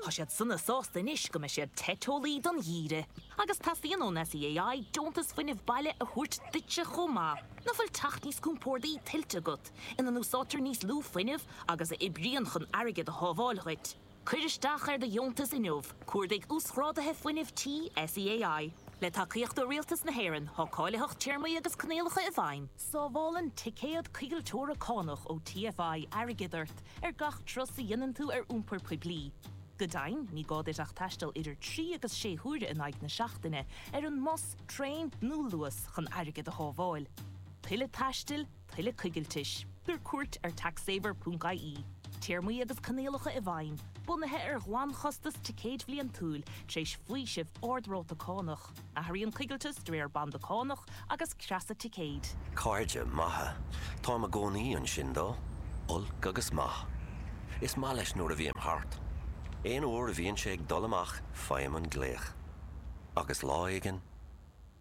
Tá siad sona sásta anois go mbeidh siad te teolaí don gheimhreadh. Agus teastaíonn ón SEAI deontas fuinnimh baile a thabhairt duitse chomh maith. Nach bhfuil teach níos compórdaí tuillte agat, ina n-úsáidtear níos lú fuinnimh agus a oibríonn chun airgead a shábháil dhuit? Cuir isteach ar do dheontas inniu, cuardaigh Uasghrádaithe Fuinnimh Tí SEAI. Le tacaíocht ó Rialtas na hÉireann, tá cáilitheacht téarmaí agus coinníollacha i bhfeidhm. Sábhálann ticéad coigilteora cánach ó TFI airgead ort ar gach turas a dhéanann tú ar iompar poiblí. Go deimhin, ní gá duit ach taisteal idir trí agus sé huaire in aghaidh na seachtaine ar an mbus, traein nó Luas chun airgead a shábháil. Tuilleadh taistil, tuilleadh coigiltis. Tabhair cuairt ar taxsaver.ie. Téarmaí agus coinníollacha i bhfeidhm, bunaithe ar ghlanchostas ticéid bhliantúil, tar éis faoiseamh ard-ráta cánach. Athraíonn coigilteas de réir banda cánach agus creasa ticéid. Cairde maithe. Táim i gcónaí ansin dó, olc agus maith. Is maith leis nuair a bhím thart. Aon uair a bhíonn sé ag dul amach faighim an glaoch. Agus lá éigin,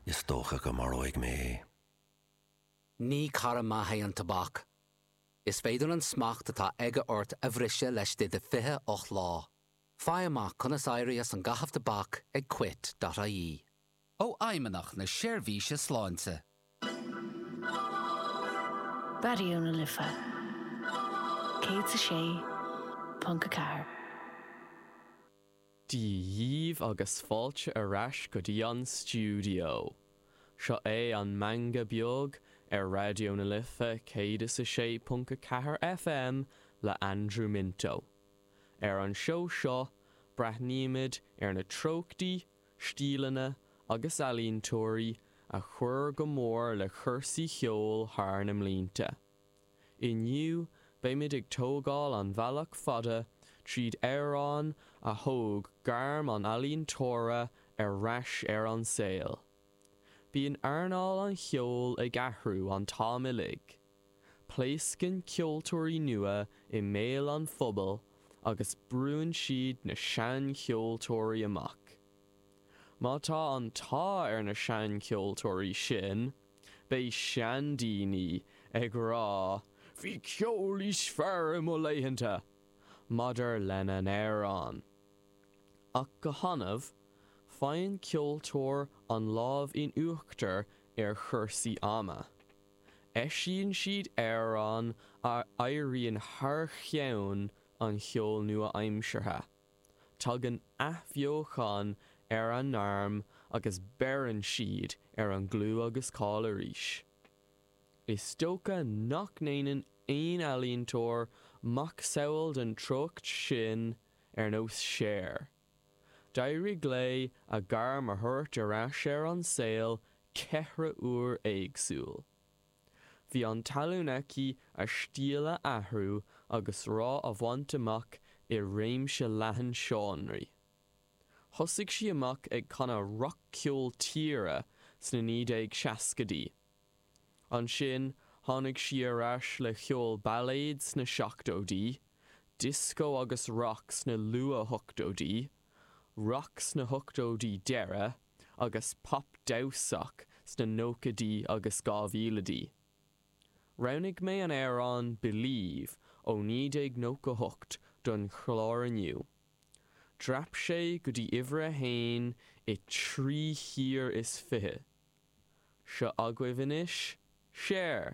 is dócha go maróidh mé é. Ní cara maith é an tobac. Is féidir an smacht atá aige ort a bhriseadh laistigh de 28 lá. Faigh amach conas éirí as an gcaitheamh tobac ag quit dot ie. ó Fheidhmeannach na Seirbhíse Sláinte. Raidió na Life 106.4. Dia dhíbh agus fáilte ar ais go dtí an stiúideo. Seo é an Meangadh Beag ar Raidió na Life 106.4 FM le Andrew Minto. Ar an seó seo, breathnaímid ar na treochtaí, stíleanna agus ealaíontóirí a chuir go mór le cúrsaí cheoil thar na mblianta. Inniu, beimid ag tógáil an bhealach fada tríd amhráin a thóg gairm an ealaíontóra ar ais ar an saol. Bíonn earnáil an cheoil ag athrú an t-am uilig. Pléascann ceoltóirí nua i mbéal an phobail agus brúnn siad na seancheoltóirí amach. Má tá an t-ádh ar na seancheoltóirí sin, beidh seandaoine ag rá 'Bhí ceol níos fearr i mo laethanta!' maidir lena n-amhráin. Ach go hannamh, faigheann ceoltóir an lámh in uachtar ar chúrsaí ama. Eisíonn siad amhráin a éiríonn thar cheann an cheoil nua-aimseartha. Tagann athbheochan ar a ngairm agus beireann siad ar an gclú agus cáil arís. Is dócha nach ndéanann aon ealaíontóir macsamhail den treocht sin ar nós Cher. D'éirigh léi a gairm a thabhairt ar ais ar an saol ceithre uair éagsúil. Bhí an tallann aici a stíl a athrú agus rath a bhaint amach i réimse leathan seánraí. Thosaigh sí amach ag canadh rac-cheol tíre sna 1960idí Ansin tháinig sí ar ais le ceol bailéad sna seachtóidí, dioscó agus rac sna luathochtóidí, rac sna hochtóidí deiridh agus pop damhsach sna nóchaidí agus dhá mhílidí. Roghnaigh mé an amhrán 'Believe' ó 1998 don chlár inniu. Dhreap sé go dtí uimhir a haon i dtrí thír is fiche. Seo agaibh anois Cher.